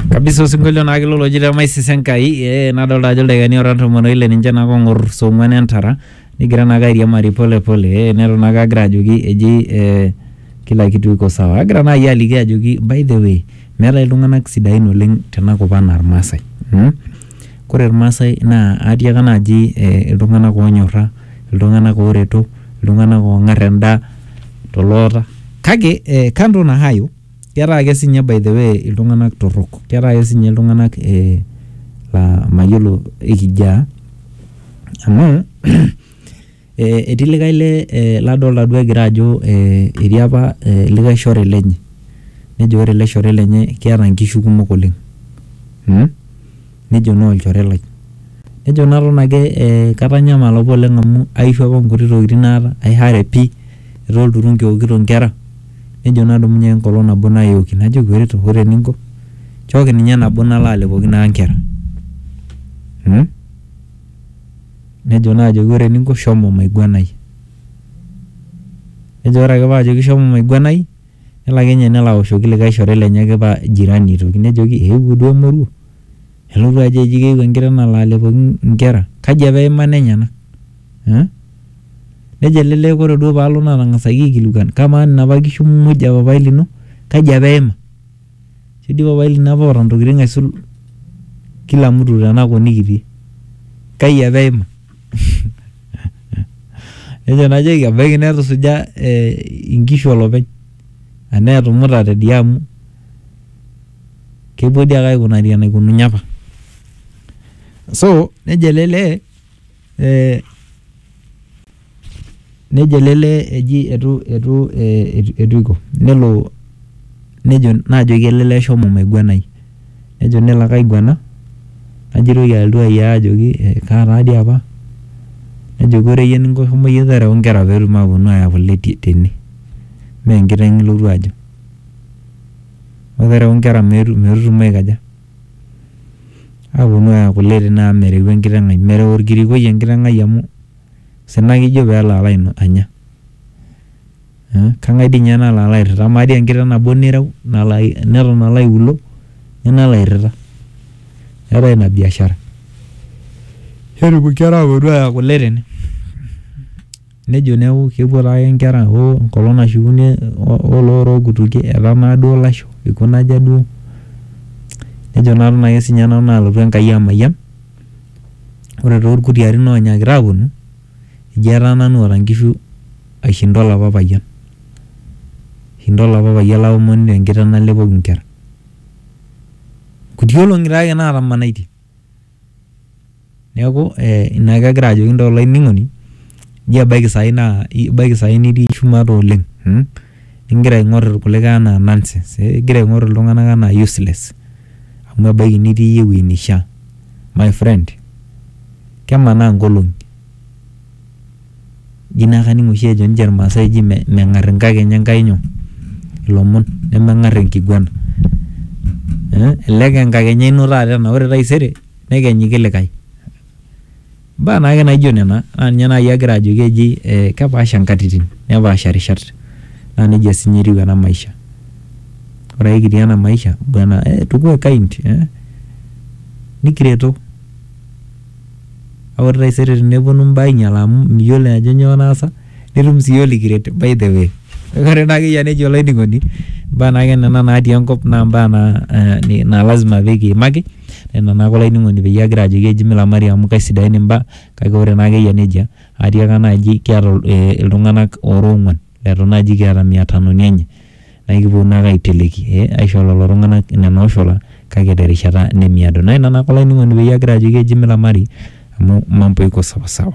kabisa osinkolio naa kilo loji le maisisa enkai ee nadolta ajo ildaikani ora tomon oile ninche naa kong'or saa ong'uan entara nigira naake airiamari pole pole ee neton naake agira ajoki eji ee kila kitu iko sawa agira naai aliki ajoki by the way meetae iltung'anak sidain oleng tenakop anaa irmaasae mm? kore irmaasae naa atiaka naaji eh, iltung'anak onyorra iltung'anak oreto iltung'anak ong'arr endaa toloota kake eh, kando na hayo ketaa ake sinye by the way iltung'anak torrok ketaa ake sinye iltung'anak eh, la mayiolo ikijaa amu eh, etii likae le eh, ladolta duo egira ajo eh, etii apa eh, likae shore lenye nejo ore ele shore lenye keeta nkishu kumok oleng hmm? nejo naa olchore lai. Nejo naton ake katanyamala apa oleng amu aishu apa nkuti tokiting naata, ai hurry pi, etaa olturunki eokito nkera, nejo nadumunye ake enkolong nabo nayoki. Najoki ore eninko, nchooki ninye nabo nalo alepoki naa nkera. Nejo naa ajoki ore eninko shomo maiguanai. Nejo ore ake pajoki shomo maiguanai Nelo ake ninye nelo aoshoki likae shore lenye ake paa jirani aitoki nejoki eewuo duo emoruo nelotu ajo eji keewuo enkiteng nalo alepoki inkera kaji apa eima nenyena eh nejo ele lee kore duo paalo natang'asaki aikilikuan kamaa nena apa kishu muj e papai lino kaji apa eima. Ketii papai lino apa oota ntokitin aisul kila mtu tena kop nikitii. Kai apa eima? Nejo najoki ebaiki netusuja inkishu olopeny anaa etumuta tidia amu kepuo dii ake aikunari enaikununye apa. So nejo ele lee ee. Nejo ele lee eji eitu eitu eitu eiko nelo nejo naajoki ele lee shomo maiguanai nejo nelo ake aiguana najoki alotu ayiaya ajoki kaa taa dii apa nejoki ore iyie eninko shomo iyie tereu inkera peetum aaponu aaya kule tene mee enkiteng ilotu ajo. Shomo tereu inkera metutum aikaja, aaponu aaya kule tene amu mereu enkiteng ai mereu orkirikoi enkiteng ai amu osina ake ijo pelo alo anya kengae dii ninye nalo alo airita ama dii enkiteng nabo nireu neton alo aiuluo ninye nalo airita keetae ina biashara netum inkera aponu aya kule tene nejo neaku kepuo taake inkera hoo enkolong nashukunyie oloota okutukie etaa naa duo ilasho ikuna aja duo nejo naa nanu alotu enkai amayian. Ore too ilkutiti oonyikita aaponu eji etaa nanu oota inkishu aishinda olapa payian. Eishinda olapa payian laomon te nkiteng nalepoki inkera. Inkuti olong`i taa naatamanaitie. Niaku ina ake agira ajoki intae olainining'oni nji ebaiki saai naa ebaiki saai nitii shumata oleng igira aing`or ilkulikae enaa nonsense igira aing`or iltung`anak enaa useless amu ebaiki nitii iyie ewueji neishia. My friend, kemanaa nkolong'i. Ji naa kaning' oshi ejo ninche ilmaasai eji meng'ar inkakeny Enkai nyoo? Ilomon, nemeng'ar enkiguana. Elelek aa enkakenya ino taata ena ore taisere nekenyu likae. Imbaa naake naijo nena naa ninye nai agira ajoki eji eh kepaasha nkatitin nepaasha rishat naa neija siinye etiu ena maisha. Ore ake kitii ena maisha bwana eh tukue kind eh nikireto kake ore taisere teneponu imbaa ainyala amu miyiolo ajo nyoo naasa nitum sii iyie likiret by the way. Ore naa ake iyie enejo olainining'oni imbaa naake nena natii enkop naa imbaa naa ee naa lazima pee kiimaki nena naake olainining'oni peyie agira ajoki eji milamari amu kesidain imbaa kake ore naake eyia neijia atiaka naaji kiata ee iltung'anak oora oong'uan eton naaji kiata mia tanoni enye nae kiponu naake aiteleki ee aisho lelo tung'anak nena oshula kake te rishata nemiado. Naa ina naake olainining'oni peyie agira ajoki eji milamari amu mambo iko sawasawa.